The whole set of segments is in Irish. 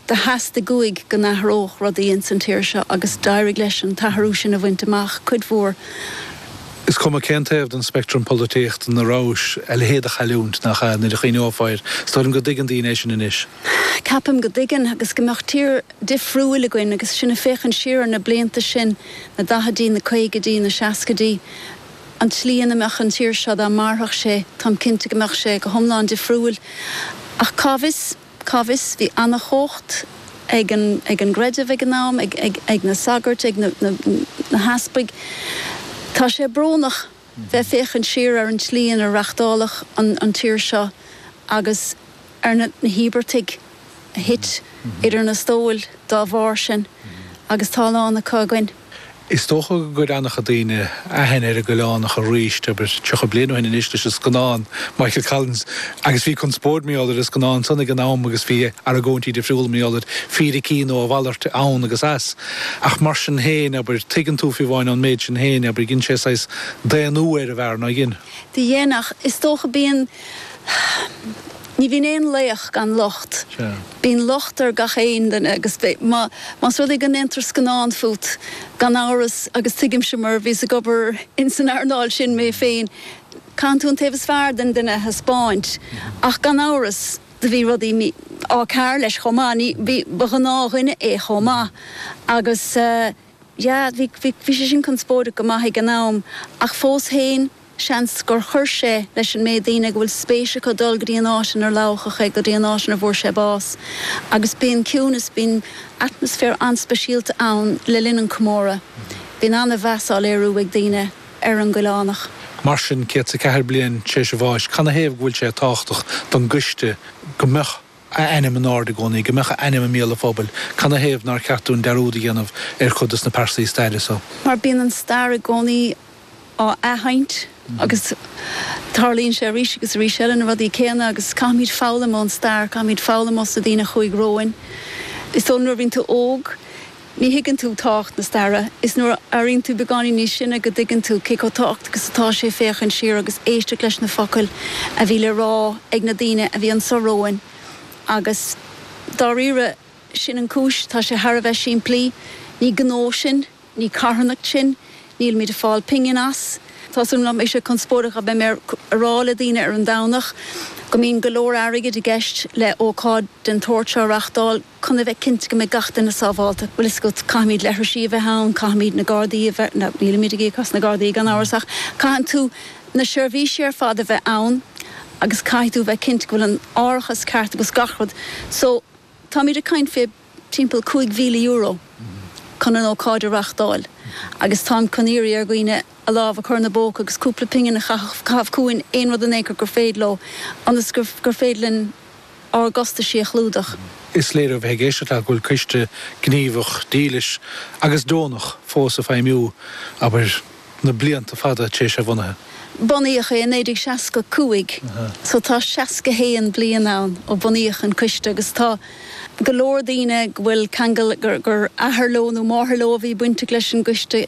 Theastaigh uaidh go n-athródh rudaí ins an tír seo agus d'éirigh leis an t-athrú sin a bhaint amach, cuid mhór. Is cuma cén taobh den speictream polaitíochta ina rabhais, a leithéid de chailliúint, nach ea, nuair a chuimhneofá air. Is dóigh liom go dtuigeann daoine é sin anois. Ceapaim go dtuigeann, agus go mbeadh tír difriúil againn agus sinn ag féachaint siar ar na blianta sin, na daichidí, na caogaidí, na seascaidí, an tslí ina mbeadh an tír seo dá mairfeadh sé. Táim cinnte go mbeadh sé go hiomlán difriúil, ach cá bhfios? cá bhfios, bhí an-chumhacht ag an gcreideamh ag an am, ag na sagairt, ag na heaspaig. Tá sé brónach bheith féachaint siar ar an tslí inar reachtáladh an tír seo agus ar na híobartaigh a thit idir na stóil dá bharr sin agus tá a lán acu againn. Is dócha go gcuir an-chuid daoine aithne ar an gCoileánach arís, abair 30 bliain ó shin anois leis an scannán Michael Collins agus bhí conspóid, mar is eol duit, ar an scannán san ag an am agus bhí argóintí difriúla, mar is eol duit, fíricí nó a mhalairt, ann agus as. Ach mar sin féin, abair, tuigeann tú, fiú amháin, an méid sin féin, abair, dhein sé saghas daonnú ar an bhfear, nár dhein? Dhein, dhein, ach, is dócha, bíonn. Ní bhíonn aon laoch gan locht. Bíonn locht ar gach aon duine agus más rud é go ndéantar scannán fút, gan amhras, agus tuigimse mar bhíos ag obair in san earnáil sin mé féin, caitheann tú an taobh is fearr den duine a thaispeáint ach gan amhras do bhí rudaí á cearr leis chomh maith, ní, bhí, ba ghnáthdhuine é chomh maith agus yeah, bhí, bhí sé sin conspóideach go maith ag an am ach fós féin. Seans gur chuir sé leis an méid daoine ag a bhfuil spéis acu dul go dtí an áit inar lamhachadh é, go dtí an áit inar bhfuair sé bás. Agus bíonn ciúnas, bíonn atmaisféar an-speisialta ann le linn an chomórtha. Bíonn an-mheas á léiriú ag daoine ar an gCoileánach. Mar sin, 104 bliain tar éis a bháis, canathaobh go bhfuil sé tábhachtach don gcoiste go mbeadh. a ainm in airde i gcónaí, go mbeadh a ainm i mbéal an phobail. Canathaobh nár cheart dúinn dearúd a dhéanamh ar chuid de na pearsaí staire so? Mar bíonn an stair i gcónaí á athsheinnt agus tarlaíonn sé arís agus arís eile, na rudaí céanna, agus caithfimid foghlaim ón stair, caithfimid foghlaim os na daoine a chuaigh romhainn. Is dóigh liom nuair a bhíonn tú óg, Ní thuigeann tú tábhacht na staire. Is nuair a éiríonn tú beagáinín níos sine go dtuigeann tú cé chomh tábhachtach is atá sé féachaint siar agus éisteacht leis na focail a bhí le rá ag na daoine a bhí anseo romhainn agus dáiríre sin an chúis. Tá sé thar a bheith simplí. Ní gnó sinn. Ní carthanacht sinn. Nílimid ag fáil pingin as. Tá sé saghas conspóideach a bheith ag rá le daoine ar an Domhnach go mbíonn go leor airgid i gceist le ócáid den tsórt seo a reachtáil. chun a bheith cinnte go mbeidh gach duine sábháilte. Bhuel, caithfimid leithrisí a bheith ann, caithfimid na Gardaí a bheith, no, nílimid ag íoc as na Gardaí gan amhras ach caitheann tú na seirbhísí ar fad a bheith ann agus caithfidh tú a bheith cinnte go bhfuil an t-árachas ceart agus gach rud so táimid ag caint fé timpeall €5,000 chun an ócáid a reachtáil agus táimid ag iarraidh ar dhaoine a lámh a chur ina bpóca agus cúpla pingin a chaitheamh chugainn aon rud in aon chor gur féidir leo ionas gur féidir linn ár gcostaisí a chlúdach. Is léir ó bheith ag éisteacht leat go bhfuil coiste gníomhach, dílis agus deonach fós ag feidhmiú, abair, na blianta fada tar éis a bhunaithe. Bunaíodh é i 1965 so tá 61 bliain ann ó bunaíodh an coiste agus tá go leor daoine go bhfuil ceangal gur athair leo nó máthair leo a bhí bainteach leis an gcoiste.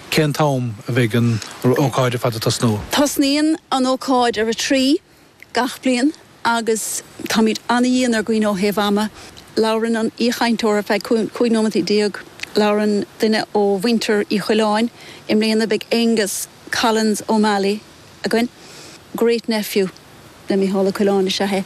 Cén t-am a bheidh an ócáid ar fad ag tosnú? Tosnaíonn an ócáid ar a 3 gach bliain agus táimid an-dhian ar dhaoine ó thaobh ama. Labhrann an aoichainteoir ar feadh 15 nóiméad, labhrann duine ó mhuintir Uí Choileáin, i mbliana beidh Aengus Collins O'Malley, againn. Great nephew le Micheál Ó Coileáin is ea é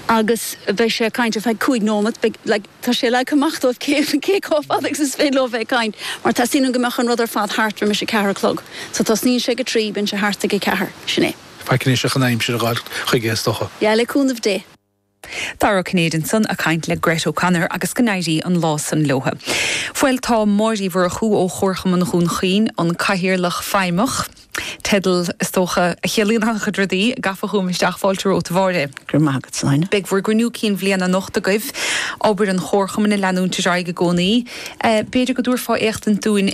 agus beidh sé ag caint ar feadh cúig nóimeat. Beidh, like, tá sé leagtha amach dóibh cé, cé chomh fada agus is féidir leo bheith ag caint mar teastaíonn uainn go mbeadh an rud ar fad thart roimis a ceathair a chlog. So tosnaíonn sé ag a trí, bíonn sé thart ag a ceathair. Sin é. Faic anois ach an aimsir a dh'fháilt chuige is dócha. Yeah, le cúnamh Dé. Dara Ó Cinnéide ansan ag caint le Grett O'Connor agus go n-éirí an lá san leotha. Bhuel tá Máire Uí Mhurchú ó Chomharchumann Dhún Chaoin, an Cathaoirleach Feidhmeach, teideal is dócha a chiallaíonn an-chuid rudaí, gafa chugam isteach, fáilte romhat a Mháire. Gura maith agat san Áine. Beidh bhur gCruinniú Cinn Bhliana anocht agaibh, obair an Chomharchumainn ag leanúint ar aghaidh i gcónaí. B'fhéidir go dtabharfá éachtaint dúinn.